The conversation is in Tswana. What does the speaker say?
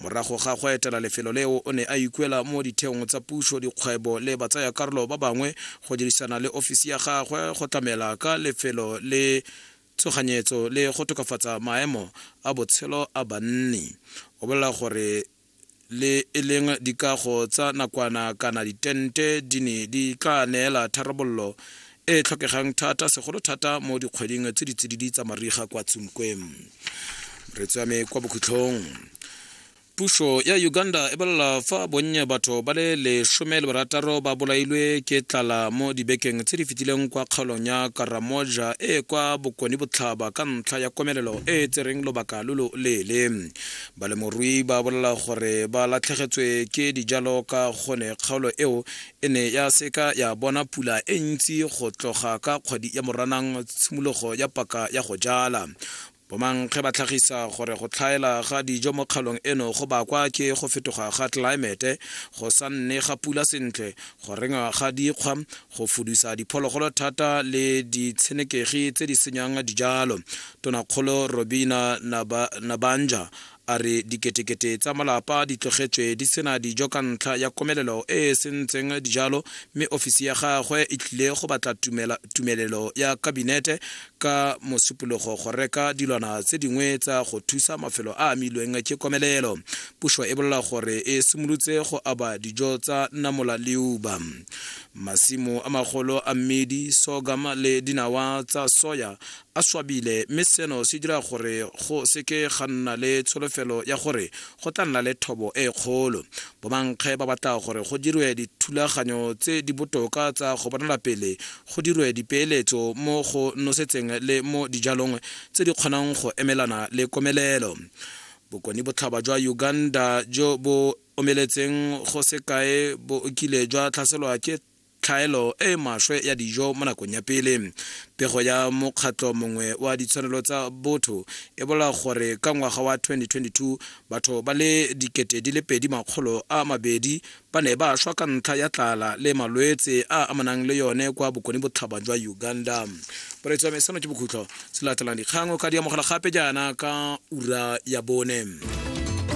Morago ga go etela lefelo leo o ne a ikuela mo ditheong tsa puso, dikgwebo le batsayakarolo ba bangwe go dirisana le ofisi ya gagwe go tlamela ka lefelo le tshoganyetso le go tokafatsa maemo a botshelo a banni. O bolela gore le e leng dikago tsa nakwana kana ditente di ne di tla neela tharabololo e tlhokegang thata segolo thata mo dikgweding tse ditsididi tsa mariga kwa tsunkweng re tswame kwa bokhutlhong puso ya uganda e bolela fa bonnye batho ba le lesome le barataro ba bolailwe ke tlala mo dibekeng tse di fetileng kwa kgaolong ya karamoja e kwa bokone botlhaba ka ntlha ya komelelo e e tsereng lobaka lo lo leele balemorui ba bolela gore ba latlhegetswe ke dijalo ka gone kgaolo eo E ne ya seka ya bona pula e ntsi go tloga ka kgwedi ya Moranang tshimologo ya paka ya go jala. Bomankge ba tlhagisa gore go tlhaela ga dijo mo kgaolong eno go bakwa ke go fetoga ga tlelaemete, go sa nne ga pula sentle, go rengwa ga dikgwa, go fudusa diphologolo thata le ditshenekegi tse di senyang dijalo. Tonakgolo Robina Nabanjah A re diketekete tsa malapa di tlogetswe di sena dijo ka ntlha ya komelelo e e sentseng dijalo mme ofisi ya gagwe e tlile go batla tumelelo ya kabinete ka mosupologo go reka dilwana tse dingwe tsa go thusa mafelo a amilweng ke komelelo. Puso e bolela gore e simolotse go aba dijo tsa namola le uba. Masimo a magolo a mmidi, sorghum le dinawa tsa soya a swabile mme seno se dira gore go seke ga nna le tsholofelo ya gore go tla nna le thobo e kgolo bomankge ba batla gore go dirwe dithulaganyo tse di botoka tsa go bonala pele go dirwe dipeeletso mo go nosetseng le mo dijalong tse di kgonang go emelana le komelelo bokone botlhaba jwa uganda jo bo omeletseng go sekae bo okile jwa tlhaselwa ke tlhaelo e e maswe ya dijo mo nakong ya pele. Pego ya mokgatlho mongwe wa ditshwanelo tsa botho e bola gore ka ngwaga wa 2022 batho ba le dikete di le pedi makgolo a mabedi ba ne ba shwa ka ntlha ya tlala le malwetse a amanang le yone kwa bokone botlhaba jwa uganda poretso ya mesano ke bokhutlho se latelang dikgang o ka di amogela gape jaana ka ura ya bone